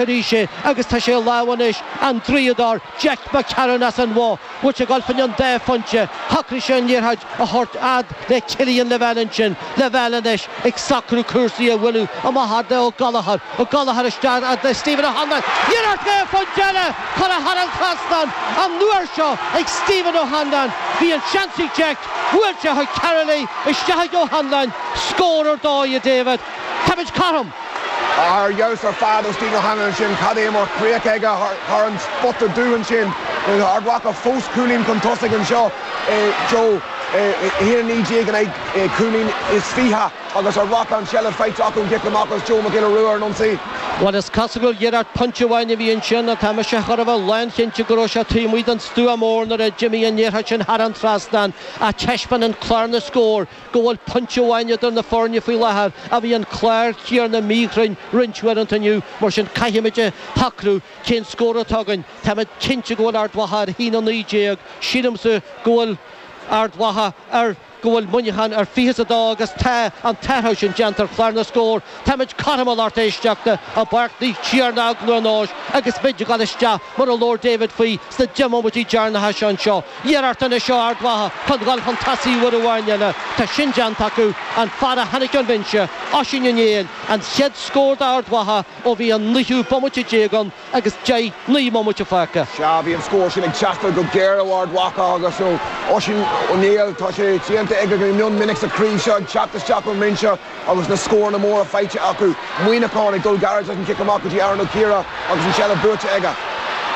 arís é agus tá sé i lámha anois an draíodóir Jack McCarron as an Bhoth. Bhfuil sé ag dul fá choinne an dá phointe. Shocraigh sé an liathróid a thabhairt fhad le Killian Lavelle ansin. Lavelle anois ag socrú cúrsaí a bhualadh amach fhad le Ó Gallchóir. Ó Gallchóir isteach fhad le Stephen O'Hanlon. Iarracht dhá phointe eile curtha thar an trasnán an uair seo ag Stephen O'Hanlon. Bhí an seans ag Jack. Bhuail sé chuig Karl í. Isteach chuig O'Hanlon. Scór ar dóigh, a David. Táimid cothrom. Ar fheabhas ar fad ó Stephen O'Hanlon ansin. Cad é mar chríoch aige thar an spota dubh ansin. Ard Mhacha fós cúilín chun tosaigh anseo a Joe. 1-19 in aghaidh cúilín is fiche agus Ard Mhacha an tseilbh faighte acu ón chic amach agus Joe Mac Giolla Rua ar an ionsaí. Bhuel, is cosúil gur iarracht pointe amháin a bhí ansin ná tá mise chóir a bheith lánchinnte go raibh sé taobh amuigh den stua mór nuair a d'imigh an liathróid sin thar an trasnán ach taispeánann clár na scór go bhfuil pointe amháin idir na foirne faoi láthair ach bhí an clár céanna míchruinn roinnt uaireanta inniu, mar sin caithimid a shocrú cén scór atá againn. Táimid cinnte go bhfuil Ard Mhacha ar a haon a naoi déag, sílimse go bhfuil Ard Mhacha ar go bhfuil Muineachán ar fiche is a dó agus tá an t-athrú sin déanta ar chlár na scór. Táimid cothrom a lucht éisteachta i bPáirc Naomh Tiarnach i gCluain Eois agus muid ag dul isteach mar a labhair David faoi sna deich mbomaití deireanacha seo anseo. Iarracht anois ó Ard Mhacha chun dhul chun tosaigh uair amháin eile. Tá sin déanta acu. An fear a tháinig ón bhinse, Oisín Ó Néill, an chéad scór d'Ard Mhacha ó bhí an naoú bomaite déag ann agus deich, naoi mbomaite fágtha. Sea, bhí an scór sin ag teastáil go géar ó Ard Mhacha agus ó Oisín Ó Néill. Tá sé déanta aige go mion minic sa chraobh seo, ag teacht isteach ón mbinse. Agus na scóranna móra faighte acu, Muineachán ag dul gairid leis an gcic amach go dtí Aaron Ó Ciardha agus an tseilbh buaite aige.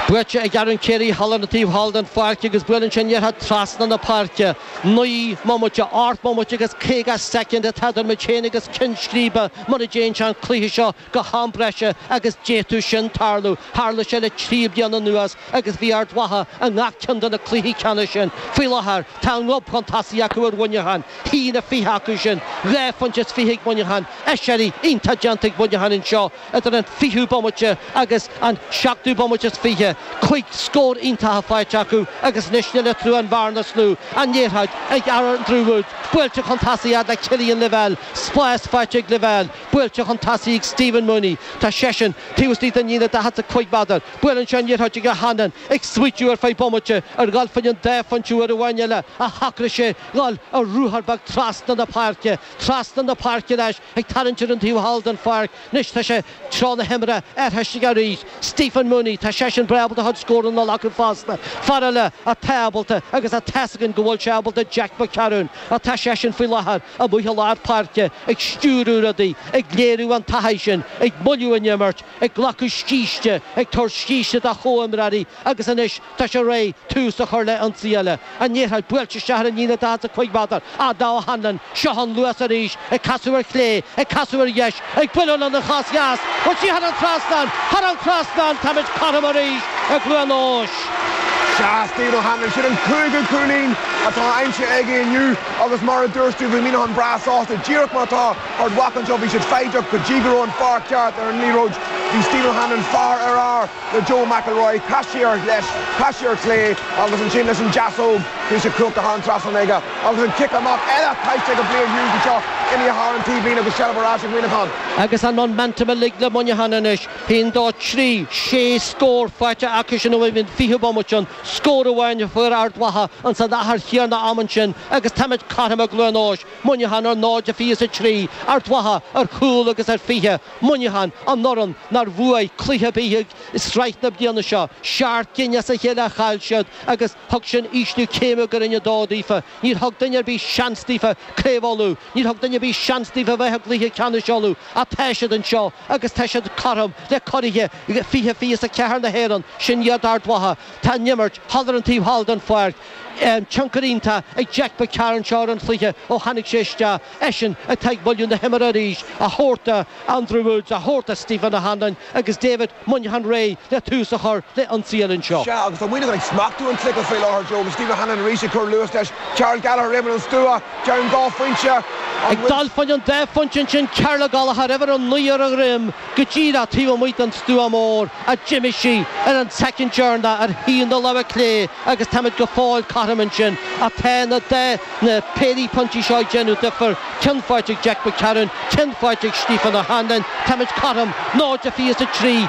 Buaite ag Aaron Carey thall ar an taobh thall den pháirc agus buaileann sé an liathróid trasna na páirce. Naoi mbomaite, ocht mbomaite agus caoga soicind atá idir muid féin agus cionn scríbe mura dtéann sé an cluiche seo go ham breise agus d'fhéadfadh sin tarlú. Tharla sé le trí bliana anuas agus bhí Ard Mhacha i ngach ceann de na cluichí ceannais sin. Faoi láthair, tá a ngob chun tosaigh acu ar Mhuineachán, a haon a fiche acu sin, dhá phointe is fiche ag Muineachán, aiséirí iontach déanta ag Muineachán anseo idir an fichiú bomaite agus an seachtú bomaite is fiche, cúig scór iontacha faighte acu agus anois níl eatarthu ach an bhearna is lú, an liathróid ag Andrew Woods, buailte chun tosaigh fhad le Killian Lavelle, spás faighte ag Lavelle. Buailte chun tosaigh chuig Stephen Mooney. Tá seisean taobh istigh den líne 45 méadar. Buaileann sé an liathróid chuig O'Hanlon, ag smaoitiú ar feadh bomaite ar dhul fá choinne an dá phointe uair amháin eile ach shocraigh sé dhul ar ruathar beag trasna na páirce. Trasna na páirce leis, ag tarraingt ar an taobh thall den pháirc anois, tá sé, treo na himeartha athraithe aige arís. Stephen Mooney, tá seisean breá ábalta a chuid scóranna a ghlacadh fosta. Fear eile atá ábalta agus tá a fhios againn go bhfuil sé ábalta Jack McCarron. Atá seisean faoi láthair. amuigh i lár páirce, ag stiúradh rudaí, ag léiriú an taithí sin, ag moilliú na himeartha, ag glacadh scíste, ag tabhairt scíste dá chomhimreoirí agus anois tá sé réidh tús a chur le ionsaí eile. An liathróid buailte isteach ar an líne daichead is a cúig méadar, ag O'Hanlon, seo an luas arís, ag casadh ar chlé, ag casadh ar dheis, ag bualadh lena chos dheas, chuaigh sí thar an trasnán, thar an trasnán, táimid cothrom arís i gCluain Eois. Seas daoibh ó tháinig siad, an cúigiú cúilín atá aimsithe aige inniu agus mar a dúirt tú, bhí Muineachán breá sásta, díreach mar atá Ard Mhacha ansin, bhí siad foighdeach go dtí go raibh an fear ceart ar an liathróid, bhí Stephen O'Hanlon fear ar fhear. le Joe McElroy, casadh ar dheis, casadh ar chlé agus ansin leis an deasóg bhí sé cuachta thar an trasnán aige agus an cic amach eile caillte ag Blaine Hughes anseo imithe thar an taobhlíne agus seilbh ar ais ag Muineachán. Agus an momentum uilig le Muineachán anois, a haon, dó, trí, sé scór faighte acusan ó bhí an fichiú bomaite ann, scór amháin a fuair Ard Mhacha ansin san achar chéanna ama sin agus táimid cothrom i gCluain Eois, Muineachán ar 0 23, Ard Mhacha ar chúl agus a fiche. Muineachán, an fhoireann nár bhuaigh cluiche ar bith i sraith na bliana seo, seacht gcinn as a chéile a chaill siad agus thug sin ísliú céime go Roinn 2 daofa. Níor thug duine ar bith seans daofa i gCraobh Uladh, níor thug duine ar bith seans daofa a bheith i gCluiche Ceannais Uladh ach tá siad anseo agus tá siad cothrom le curaithe 2024 na hÉireann, sin iad Ard Mhacha. Tá an imirt thall ar an taobh thall den pháirc, tionchar iontach ag Jack McCarron seo ar an chluiche ó tháinig sé isteach. Eisean atá ag moilliú na himeartha arís, a thabhairt do Andrew Woods, a thabhairt do Stephen O'Hanlon agus tá Muineachán réidh le tús a chur le ionsaí eile anseo. Sea, agus tá Muineachán ag smachtú an chluiche faoi láthair, Joe, agus Stephen O'Hanlon arís ag cur luais leis. Karl Gallagher, roimh an stua, Jaimin dhá phointe, an bhfuil? Ag dul faoin an dá phointe ansin, Karl Gallagher, uimhir a naoi ar a dhroim, go díreach taobh amuigh den stua mór ach d'imigh sí, ar an seachrán, d'imigh ar thaobh na láimhe clé agus táimid go fóill cothrom ansin, atá na dá. na péirí pointí seo ag déanamh difear, ceann faighte ag Jack McCarron, ceann faighte ag Stephen O'Hanlon, táimid cothrom, 0 23,